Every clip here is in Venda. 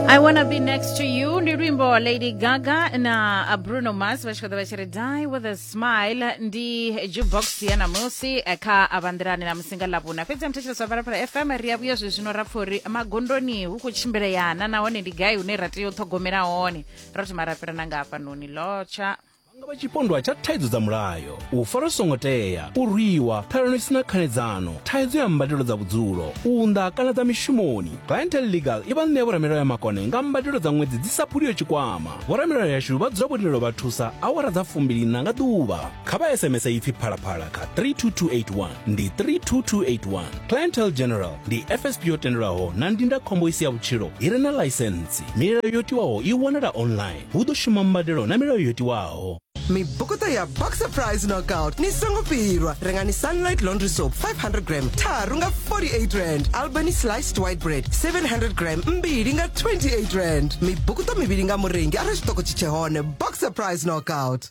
I wanna be next to you ndi luimbo wa lady gaga na bruno mars vha tshi kha ḓa vha tshi ri die with a smile ndi jukebox ya namusi eh, kha avhanḓirani na musinga ḽavhuna fhedzi ya muthetshelesi wa phalaphala fm ri a vhuya zwe zwino ra pfa uri magondoni hu khou tshimbileyana nahone ndi gai hune ra tea u ṱhogomela hone ro thoma ra fhirana nga hafhanoni lotsha Vha nga vha tshipondwa tsha thaidzo dza mulayo, u farwa zwi songo tea, u rwiwa, ṱhalano i si na khanedzano, thaidzo ya mbadelo dza vhudzulo, u unḓa kana dza mishumoni. Clientele Legal i vha ṋea vhoramilayo ya makone nga mbadelo dza ṅwedzi dzi sa phuliho tshikwama. Vhoramilayo yashu vha dzula vho lindela u vha thusa awara dza fumbili-nṋa nga ḓuvha. Kha vha SMS ipfi Phalaphala kha 32281, ndi 32281. Clientele General ndi FSP yo tendelwaho na ndindakhombo i si ya vhutshilo i re na ḽaisentsi. Milayo yo tiwaho i wanala online. hu ḓo shuma mbadelo na milayo yo tiwaho. Mibukuṱo ya Boxer Prize Knockout ni songo fhirwa. Rengani Sunlight Laundry Soap 500 gram tharu nga 48 rand. Albany Sliced White Bread 700 gram mbili nga 28 rand. Mibukuṱo mivhili nga murengi arali tshiṱoko tshi tshe hone. Boxer Prize Knockout.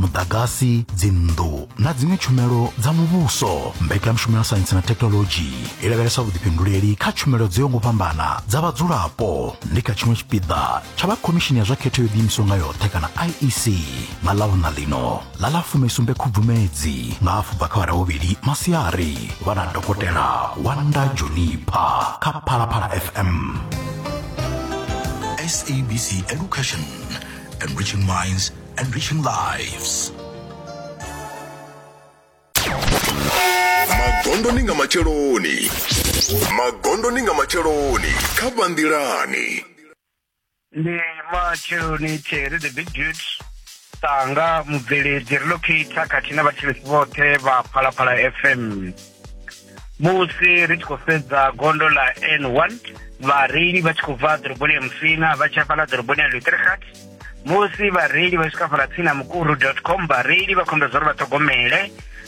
muḓagasi dzinnḓu na dziṅwe tshumelo dza muvhuso mbekanyamushumo ya saintsi na thekinolodzhi i lavhelesa vhuḓifhinduleli kha tshumelo dzo yaho ngo fhambana dza vhadzulapo ndi kha tshiṅwe tshipiḓa tsha vha khomishini ya zwa khetho yo ḓiimisaho nga yoṱhe kana iec nga ḽavhuna ḽino ḽa ḽa fumisumbe khubvumedzi nga afho bva kha vhara vhuvhili masiari vha na dokotela wanda jonipa kha phalaphala fm SABC Education, enriching minds Enriching lives. magondoni nga matsheloni magondoni nga matsheloni kha vhanḓilani ndi matsheloni tere the big dude tanga mubveledzi relocator khathihi na vhathetshelesi vhoṱhe vha phalaphala fm musi ri tshi khou sedza gondo ḽa n one vhareili vha tshi khou bva ḓoroboni ya musina vha tshi hafhaḽa ḓoroboni ya lutrhat musi vhareili vha tshi khou hafhaḽa tsini na mukuru dot com vhareili vha khombela zwa uri vha ṱhogomele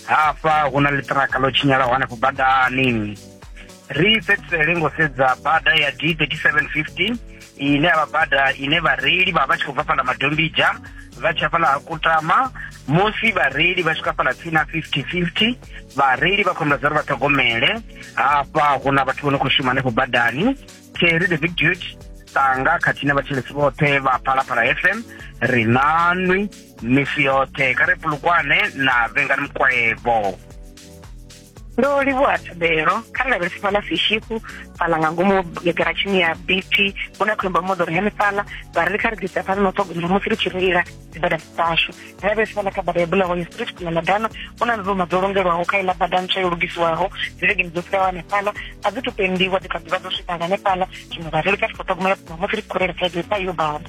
hafha hu na ḽiṱiraka ḽo tshinyalaho hanefho badani ri fhedzisele ngo sedza bada ya d 3715 ine ya vha bada ine vhareili vha vha tshi khou bva fhala madombija vha tshi hafhala ha kutama musi vhareili vha swika fhala tsini na 50-50 vhareili vha khombela dza uri vha ṱhogomele hafha hu na vhathu vho no khou shuma hanefho badani terry the big dude tanga khathihi na vhatshelesi vhoṱhe vha phalaphala fm ri nanwi misi yoṱhe kha ri pulukwane na vhengani mukwevho ndo livhuwa thabelo kha ri lavhelese fhaḽa sishiku fhaḽa nga ngomu garatshini ya bt hu na khombo moḓoro henefhaḽa vha ri kha ri ḓisa phanḓa na u ṱhogomela musi ri tshi reila dzibada dzashu ri lavhelese fhaḽa kha bada ya bulawayo street khona na dano hu na nzuma dzo longelwaho kha iḽa bada ntswa yo lugisiwaho dzivhegeni dzo fhiraho hanefhaḽa a dzi to pendiwa dzi kha ḓi vha dzo swika nga hanefhaḽa zwino vha ri ri kha ri khou ṱhogomela musi ri tshi khou reila kha yo bada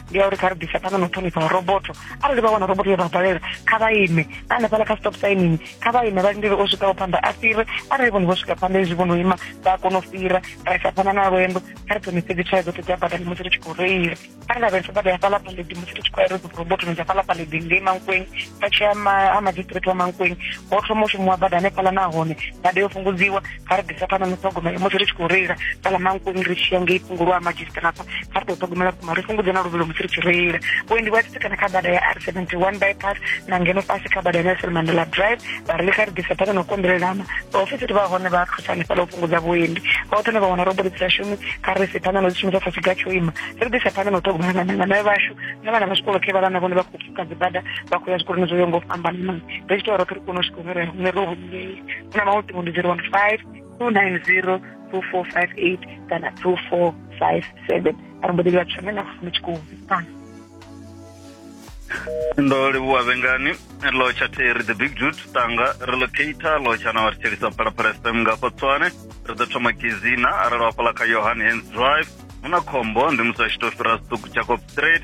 ndi ya uri kha ri ḓisa phanḓa na u ṱhonifha roboto arali vha wana roboto ya vha balela kha vha ime na hanefhaḽa kha stop sainini kha vha ime vha lindele o swikaho phanḓa a fhire arali vhone vho swika phanḓa hezwi vho no ima vha kona u fhira ra isa phanḓa na lwendo kha ri ṱhonifhe dzi tshayo dzoṱhe dza badani musi ri tshi khou reila kha ri lavhelese bada ya fhaḽa paḽedi musi ri tshi khou ya ri robotoni dza fhaḽa paḽedi ngei mankweng vha tshi ya ha magistrate wa mankweng ho thoma u shumiwa bada hanefhaḽa nahone bada yo fhungudziwa kha ri ḓisa phanḓa na ṱhogomelo musi ri tshi khou reila fhaḽa mankoni ri tshiya ngei fhungulwa ha madzhisita nafha kha ri ḓo ṱhogomela vhukuma ri fhungudze na luvhilo musi ri tshi reila vhuendi vhu a tsitsikana kha bada ya r 71 bypass na ngeno fhasi kha bada ya nelson mandela drive vhareili kha ri ḓisa phanḓa na u konḓelelana vhaofisiri vha hone vha thusa hanefhaḽa u fhungudza vhuendi vhoṱhe ne vha wana roboli dzi shumi kha ri si phanḓa na u dzi shumisa sa tshiga tsho ima ri ḓisa phanḓa na u ṱhogomela na nanga nae vhashu na vhana vha zwikolo khe vhalana vhone vha khou pfuka dzibada vha khou ya zwikoloni zwo yo ngo fhambanana ri tshi tou roṱhe ri kone u swika hune ri hune ro 1958 una mawo ṱingo ndi 015 290 2458 kana 2457 a ri mbo ḓi livha tshono na fumi tshikumbi ndo livhuwa vhengani lotsha theri the big jut tanga relocator lotsha na vhathu thelisa phalaphala fm nga khotswane ri ḓo thoma kizina arali wafhala kha yohan hands drive hu na khombo ndi musi a tshi tou fhira siṱuku jacob straight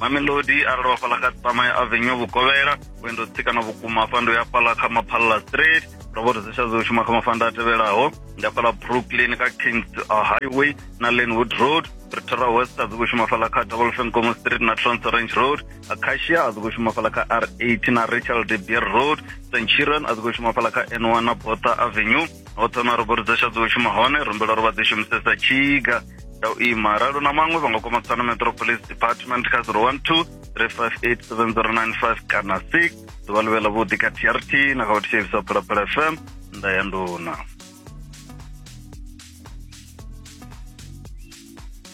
mamelodi arali wa fhaḽa kha tsamaya avenue vhukovhela vhuendo tsikana vhukuma hafha ndo ya fhaḽa kha maphalla street ndo vho rizisha dzo shuma kha mafanda a tevhelaho ndi fhaḽa brooklyn kha kings uh, highway na lenwood road pretoria west a dzikho shuma fhaḽa kha double fencomo street na trans orange road acacia a dzikho shuma fhaḽa kha r8 na rachel de beer road st chiron a dzikho shuma fhaḽa kha n1 na botha avenue ho thoma ro vhori dzasha dzo shuma hone ro mbela ro vha dzi shumisesa tshiga ya u ima ralo na maṅwe vha nga kwama tsano metro police department kha 012 3587095 kana 6 ḓuvha ḽivhela vhuḓi kha trt na kha vhathetshelisa phalaphala fm nda ya nduna